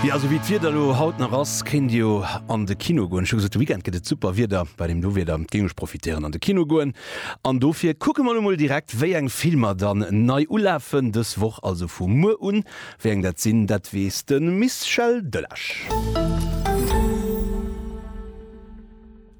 Jo, esou wéi d'Wieder elo haut nach ass, kéint Dir jo an de Kino goen. Ech hu gesot, de Weekend gëtt et super Wieder. Bei deem do Wieder géing ech profitéieren an de Kino goen. An dofir kucke mer elo mol direkt, wéi eng Filmer dann nei ulafen dës Woch, also vu muer un. Wéi eng dat sinn, dat weess de Mischel Döllesch.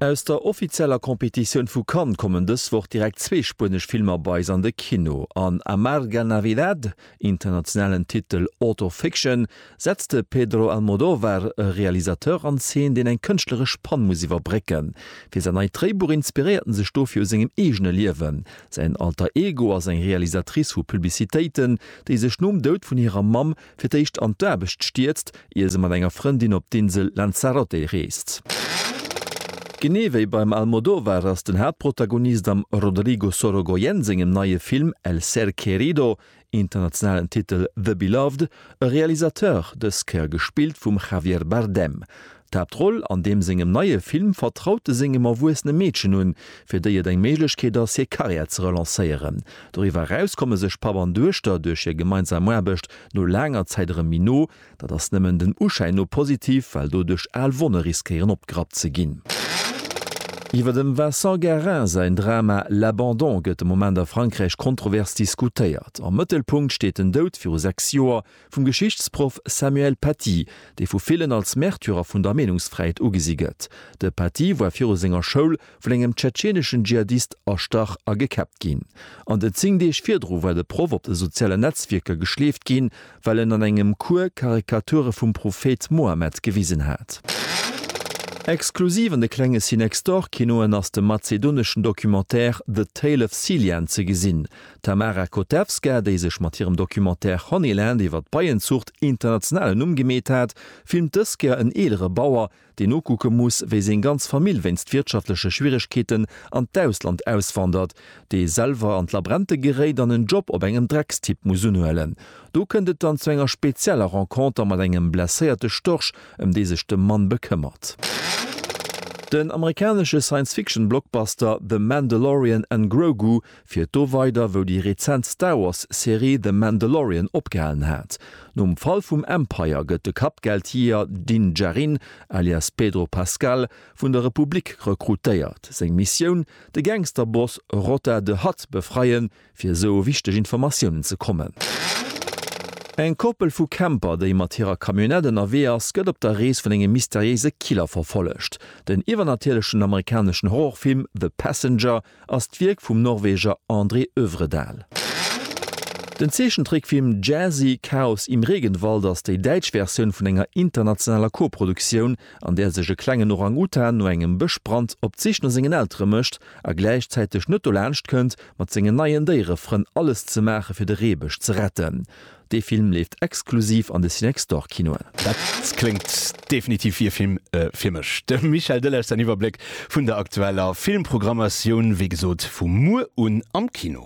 Aus der offizieller Competitioun vu Cannes kommen dës Woch direkt zwee spuenesch Filmer bei eis an de Kino. An Amarga Navidad, Internationalen Titel Auto Fiction setzt de Pedro Almodóvar e Realisateur an Zeen, deen eng kënschtleresch Pann muss iwwerbrécken. Fir säin neit Dréibuch inspiréiert en sech dofir u sengem eegene Liewen. Säin Alter Ego ass eng Realisatrice vu Publicitéiten, déi sech nom Doud vun hirer Mamm fir d'éischt an d'Aarbecht stierzt, ier se mat enger Frëndin op d'Insel Lanzarote reest. Genee wéi beim Almodóvar ass den Haaptprotagonist am Rodrigo Sorogoyen sengem neie Film El ser querido, internationalen Titel The Beloved, e Realisateur, dës Kéier gespillt vum Javier Bardem. D'Haaptroll an deem sengem neie Film vertraut e sengem erwuessene Meedchen un, fir déi et eng Méiglechkeet ass, hir Karriär ze relancéieren. Doriwwer eraus komme sech Papp an Duechter duerch hir gemeinsam Aarbecht No laanger Zäit erëm méi no. Dat ass nëmmen den Uschäin no positiv, well doduerch al Wonne riskéieren opgerappt ze ginn. Iwwer dem Vincent Guerin säin Drama L'abandon gëtt de Moment a Frankräich kontrovers diskutéiert. Am Mëttelpunkt steet den Doud, viru sechs Joer, vum Geschichtsproff Samuel Paty, dee vu villen als Märtyrer vun der Meenungsfräiheet ugesi gëtt. De Paty war viru senger Schoul vun engem tschetscheneschen Dschihadist erstach a gekäppt ginn. An den 10 Deeg virdru war de Proff op de sozialen Netzwierker geschleeft ginn, well en an engem Cours Karikature vum Prophet Mohammed gewisen hat. Exklusiv an de klenge Cinextorkinoen ass de mazedoneschen Documentaire The Tale of Cillian ze gesinn. D'Tamara Kotevska, déi sech mat hirem Documentaire Honeyland iwwer d'Beienzuucht international en Numm gemeet hat, filmt dës Kéier en eelere Bauer, deen nokucke muss, wéi seng ganz Famill wéinst wirtschaftleche Schwieregkeeten an d'Ausland auswandert, dee selwer an d'Labrente geréit an en Job op engem Dreckstipp muss unhuelen. Do kënnt et dann zu enger spezieller Renconter mat engem blesséierte Storch, ëm dee sech de Mann bekëmmert. Den amerikanesche Science-Fiction-Blockbuster The Mandalorian an Grogu Fiert do weider wou déi rezent Star Wars Serie The Mandalorian opgehalen hat. Nom Fall vum Empire gëtt de Kappgeldjeeër Din Djarin, alias Pedro Pascal, vun der Republik rekrutéiert. Seng Missioun, de Gangsterboss Rotta the Hutt befreien, fir esou u wichteg Informatiounen ze kommen. Eng Koppel vu Camper, déi mat hirer Camionnette ënnerwee ass, gëtt op der Rees vun engem mysteriéise Killer verfollegt. Den iwwernatierlechen amerikaneschen Horrorfilm The Passenger ass d'Wierk vum Norweger André Övredal. Den Zeechentrickfilm Jazzy, Chaos im Regenwald ass déi däitsch Versioun vun enger internationaler Koproduktioun, an där sech e klengen Orang-Utan no engem Bëschbrand op d'Sich no sengen Eltere mécht a gläichzäiteg net dolaanscht kënnt, mat sengen neien Déierefrënn alles ze maache fir de Reebësch ze retten. Dee Film leeft exklusiv an de Cinextor-Kinoen. Dat kléngt definitiv wéi e Film fir mech. De Michel Delage säin Iwwerbléck vun der aktueller Filmprogrammatioun, wéi gesot, vu muer un am Kino.